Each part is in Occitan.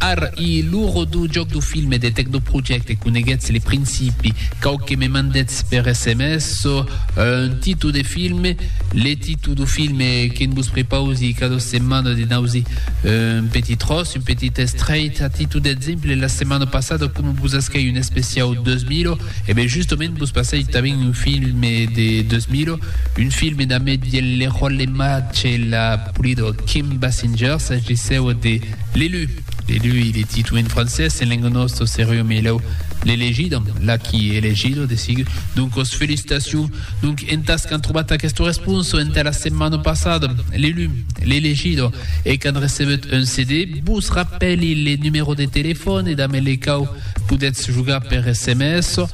Ar i lo rodó jòc do filme de Tecnoprojecte Coneguètz le principi, cau que me mandètz per sms un títol de filme, le títol do filme que'n vos prepausi cada setmana de nausi un petit tròç, un petit estrait, a títol d'exemple la setmana passada coma vos asquèi un especiau 2000, e ben justament vos passèi tanben un filme de 2000, un filme damb eth Leroy Lemache e la Polydor Kim Basinger, s'agissèu de. L'elu, l'elu e le titu en francés, en lenga nòsta seriu melhau l'elegidam, la qui e elegido de sigu. Doncos felicitacion. Donc entas qu'an trobat aquesta responsa entà la setmana passada, l'elu, l'elegido, e qu'an recebut un CD, vos rapèli le numèro de telefòn e damb le cau podètz jogar per sms,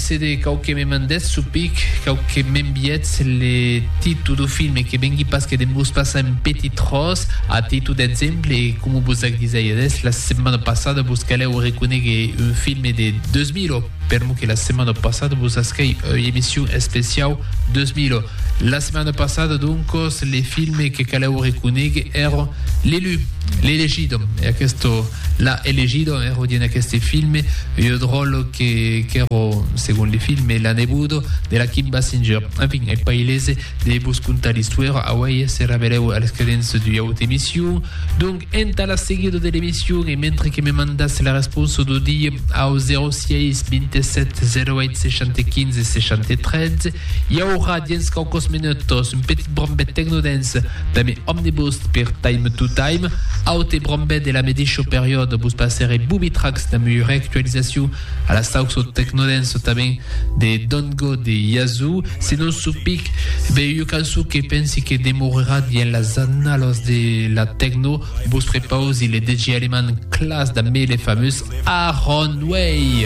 Se de cau que me mandètz su pic, cau que m'enviètz le titu du filme que vengui pas que de mos passar un petit tròç a titu d'exemple, coma vos ac disèires la setmana passada, vos calèu reconéguer un filme de 2000, per mo que la setmana passada vos ascai ua emission especiau 2000. La setmana passada, doncos, le filme que calèu reconéguer èra L'Élu, L'Elegido, e aqueste L'Elegido èra dins aqueste filme ua dròla que qu'èro, segon li filme, l'anebudo de la Kim Basinger. Enfin, eth pailese de vos contar l'istòira auei se revelèu a les credents d'ua auta emission. Donc, entà la seguida de l'emission e mentre que me mandatz la responsa d'o dia au 06 27 08 75 63, i aurà, dins quauques minutos, un petit brambet tecnodance Tame omnibus per Time to Time, aute brombè de la medisho periòd vos passèrè Booby Tracks damb ua reactualizacion a la sauço tecnodance tanben de Don't Go de Yazoo, se non sou pic be ua cançon que pensi que demourerà dient las annalos de la tecno, vos prepausi le DJ aleman Klaas dambe le famós Aaron Way.